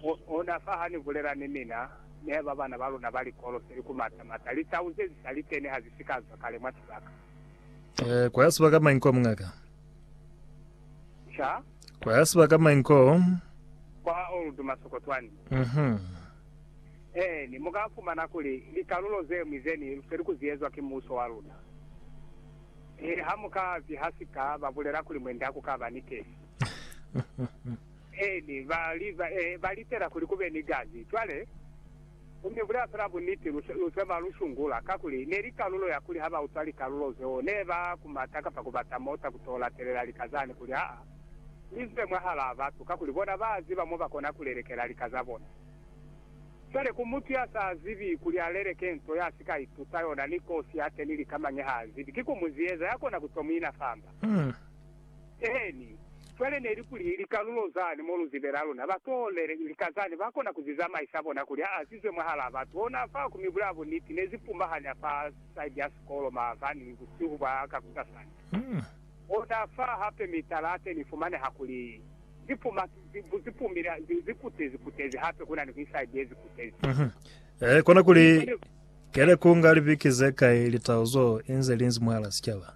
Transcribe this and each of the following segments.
Ku ona fa ha ni bulela ni mina, ne ba bana ba luna ba likolo se li ku mata mata. Litau ze z'i sa li teni ha zi si ka zwa kale mwa sibaka. Eh, kwa ya sibaka mañi kwa, muñaka? Ca? Kwa ya sibaka mañi ko? Kwa Old Masokotwani. Mhm. Eeni, mu ka fumana kuli likalulo ze ñwi ze ni lufeli ku zi ezwa ki Muso wa luna. He, ha mu ka ziha sika, ba bulela kuli mwe nda ku ka ba ni kesi. Eeni, ba li, ba, e, ba litela kuli ku be ni gazi. Cwale, Ku mi bulela fela buniti, lu, lu se ba lu shungula, kakuli, ne li kalulo ya kuli ha ba utwa likalulo zeo, ne ba kumata kapa ku bata mota ku to latelela lika zani, kuli, Aa, mi zwe mwahalaa batu, kakuli bona ba ziba mo ba kona ku lelekela lika za bona. Cwale, ku mutu ya sa zibi kuli a leleke nto ya si ka ituta yona, ni kosi ya teni lika mañi ha a zibi, ki ku mu zieza, ya kona ku to mu ina famba. Eeni. Cwale neli kuli likalulo zani mo luzibe la luna ba toolele lika zani ba kona ku zi zamaisa bona kuli a azizwe mwahalaa batu hona fa ku mibu la buniti ne zi pumahanya fa side ya sikolo maabani busihu bwa kakusasani. Hona fa hape mitala ya teni ifumaneha kuli zi puma zi bu zi pumile zi zi kutezi kutezi hape kuna ni ku iside ye zi kutezi. Eehi kona kuli kele ku nga libiki ze kai litau zo inze linzi mwahala sicaba.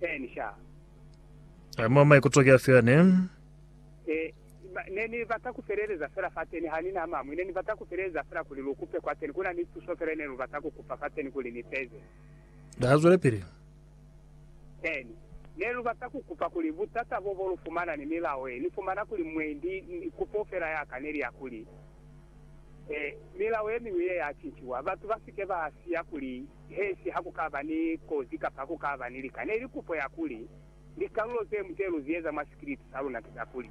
Eh, ni sha. Eh, mwa maikuto ki afi ane? Eh, ba, ne ni bata ku feleleza fela fateni, ha ni na amamwi. Ne ni bata ku feleleza fela kuli lu kupe kwateni. Ku na ni tuso fela ne lu bata ku kupa fateni kuli ni feze. Ha zwelepili. Eh, ni, ne lu bata ku kupa kuli butata bo bo lu fumana ni milao ye ni fumana kuli mwendi, ni, kupo fela ya ka neli ya kuli, eh, milao ye miñwi ye ya cinciwa, batu ba si ke ba siya kuli Hesi ha ku ka ba ni kozi kapa ku ka ba ni lika, ne li kupo ya kuli, Likalulo ze mute lu zieza mwa sikiliti sa luna ki za kuli,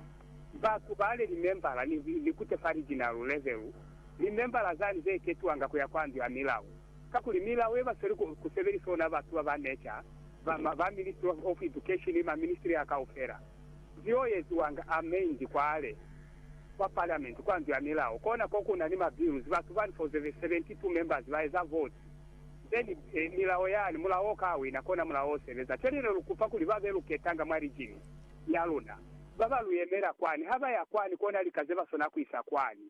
ba kubale limembala ni, ni kute fa lijinalu levelu, limembala zani ze ketuwanga ku ya kwa ndu ya milao. Kakuli milao ye ba sweli ku, ku sebelisa ona batu ba ba neca, ba, ma, ba Ministry of, of Education ni maministry a kaufela, zio eziwanga a mendi kwale. kwa Parliament, kwa Ndu ya Milao, kona ko kuna ni ma bills, batu bani for the 72 members ba eza vote, then milao yani, mulao o ka wina, kona mulao o sebeza. Cwale ne lu kupa kuli ba be lu ketanga mwa region ya luna, ba ba lu yemela kwani, ha ba ya kwani, kona lika ze ba sona ku isa kwani,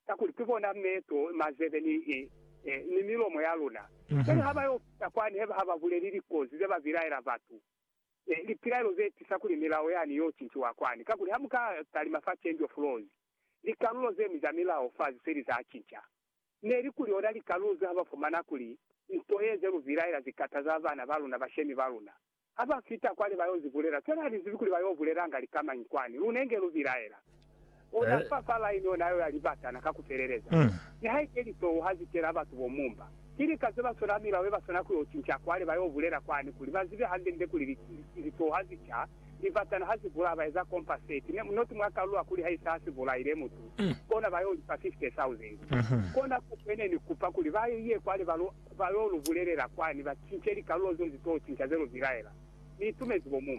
kakuli ki bona meto, mazebe, ni, ni milomo ya luna. Cwale ha ba yo fita kwani, heba ha ba buleli likozi ze ba bilaela batu, Lipilaelo ze tisa kuli milao yani yo cinciwa kwani, kakuli ha mu ka talima fa Change of Laws, likalulo ze ñwi za milao fa ze li za cinca. Ne li kuli ona likalulo ze ha ba fumana kuli nto ye ze lu bilaela zi kataza bana ba luna, bashemi ba luna. Ha ba fita kwale ba yo zi bulela, fela ha li zibi kuli ba yo bulelanga likamañi kwani, lune nge lu bilaela. U na fa fa laini ona yo ya libatana ka ku feleleza. Nihaike litoho ha zi kena batu bo mumba, ki lika ze ba sona milao ye ba swana ku yo cinca kwale ba yo bulela kwani kuli ba zibe hande-nde kuli litoho ha zi ca, libatana ha zi bulaya ba eza compensate, ne, not mwa kalula kuli ha isa ha si bulaile mutu, kona ba yo li fa 50,000. Kona kupe ne ni kupa kuli ba ye kwale ba lo, ba yo lu bulelela kwani ba cince likalulo zeo zi to cinca ze lu bilaela.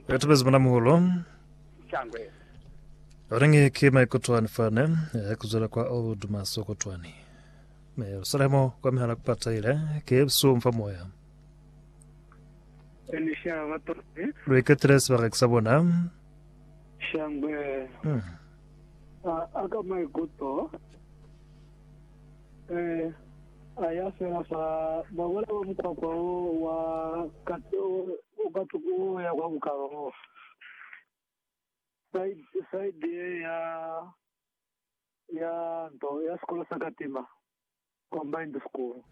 Ni itumezi muna muhulo. Oneñi ki maikutwani fani ya kuzwela kwa old Dumaso kotwani? Mi Yerusalemu kwa mihala kupataile ki busum fa moya. Lu iketile sibaka ki sa bona. Hmm. Ee, a ya fela fa bakwela ba mukwakwa wo wa ka tuku wo ya kwa bukalo bo side, side ye ya, ya nto ya sikolo sa Katima Combined School.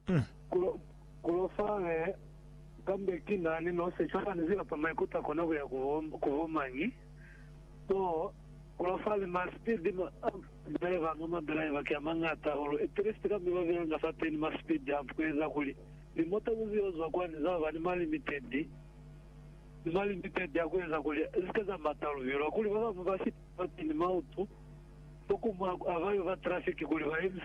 Hm. Kulofale, kambe ki na ni nose cwale ani zilapa maikuto a kona kuya ku bo mañi? Oh, kulofale, ma speed, ma driver anga ma driver ki a mañata hahulu, at least kambe ba belanga fateni ma speed hump kueza kuli limota ku zio zwa kwani za ba ni ma limited, ni ma limited a kueza kuli zi ke za mata luvilo. Hakuli ba bamu ba fita fateni mautu, bo kumu a ba yo ba traffic kuli ba yemise.